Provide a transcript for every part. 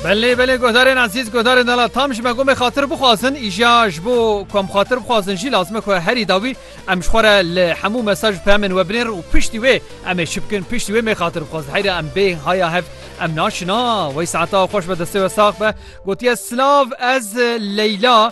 Belê belê guhdarên ezîz guhdarên dala tam ji me gomê xatir bixwazin îja ji bo ku em xatir bixwazin jî lazim e ku herî dawî em ji xwe re li hemû mesaj û peyamên we binêrin û piştî wê em ê çi bikin piştî wê mê xatir bixwazin heyre em bê haya hev em naçin a wey saeta xweş be destê we sax be gotiye silav ez leyla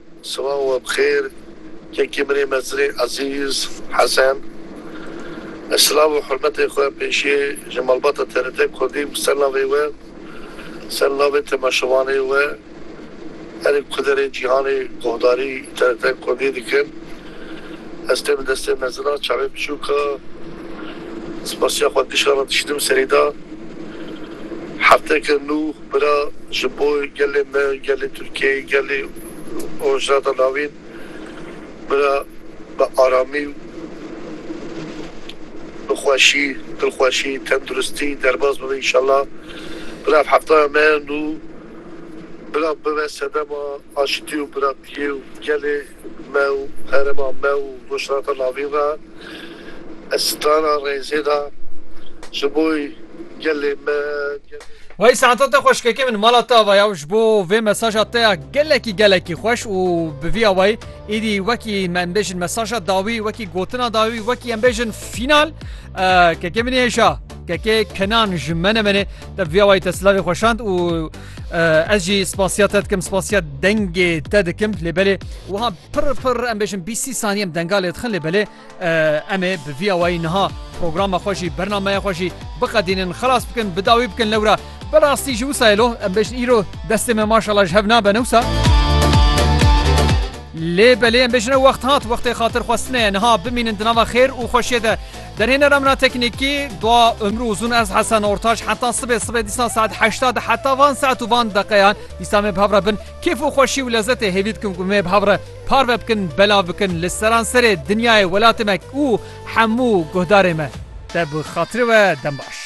Sibav we bi xêr kekê min ê mezirê Ezîz Hesen. Ez silav û hurmetê xwe pêşî ji malbata TRT Kurdî bi ser navê we, ser navê temaşevanê we herî kuderê cîhanê guhdarî TRT Kurdî dikim. Ez tê bi destê mezina çavê biçûk a spasiya xwe dişa re dişînim serî de. Hefteke nû. Bira ji bo gelê me, gelê Tirkiyeyê, gelê Rojhilata Navîn bira bi aramî û bi xweşî, dilxweşî, tenduristî derbas bibe înşallah. Bira ev heftaya me ye nû bira bibe sedema aşitî û biratiyê û gelê. Me û herêma me û Rojhilata Lavîn re ez strana rêzê da ji bo gelê me. Wey Saeta te xweş kekê min mala te ava ya ji bo vê mesaja te ya gelekî gelekî xweş û bi vî awayî êdî wekî me em bêjin mesaja dawî wekî gotina dawî wekî em bêjin fînal kekê min ê hêşa kekê kenan ji me ne menê te bi vî awayî te silavê xweşand û Ez jî spasiya te dikim spasiya dengê te dikim lê belê wiha pir pir em bêjin bî sî saniye em denga lê dixin lê belê em ê bi vîya wayî niha programa xwe jî bernameya xwe jî biqedînin xelas bikin bi dawî bikin lewra bi rastî jî wisa lo em bêjin îro destê me maşala ji hev nabe newsa lê belê em bêjin wext hat wextê xatir xwestineye niha bimînin di nava xêr û xweşiyê de Derhênera min a teknîkî, dua umru uzun ez Hesen Ortaç heta sibê sibê dîsa saet heşta de heta van saet û van deqeyan dîsa me bi hev re bin kêf û xweşî û lezetê hêvî dikim ku me bi hev re parve bikin belav bikin li seranserê dinyayê welatê me û hemû guhdarê me te bi xatirê we dem baş.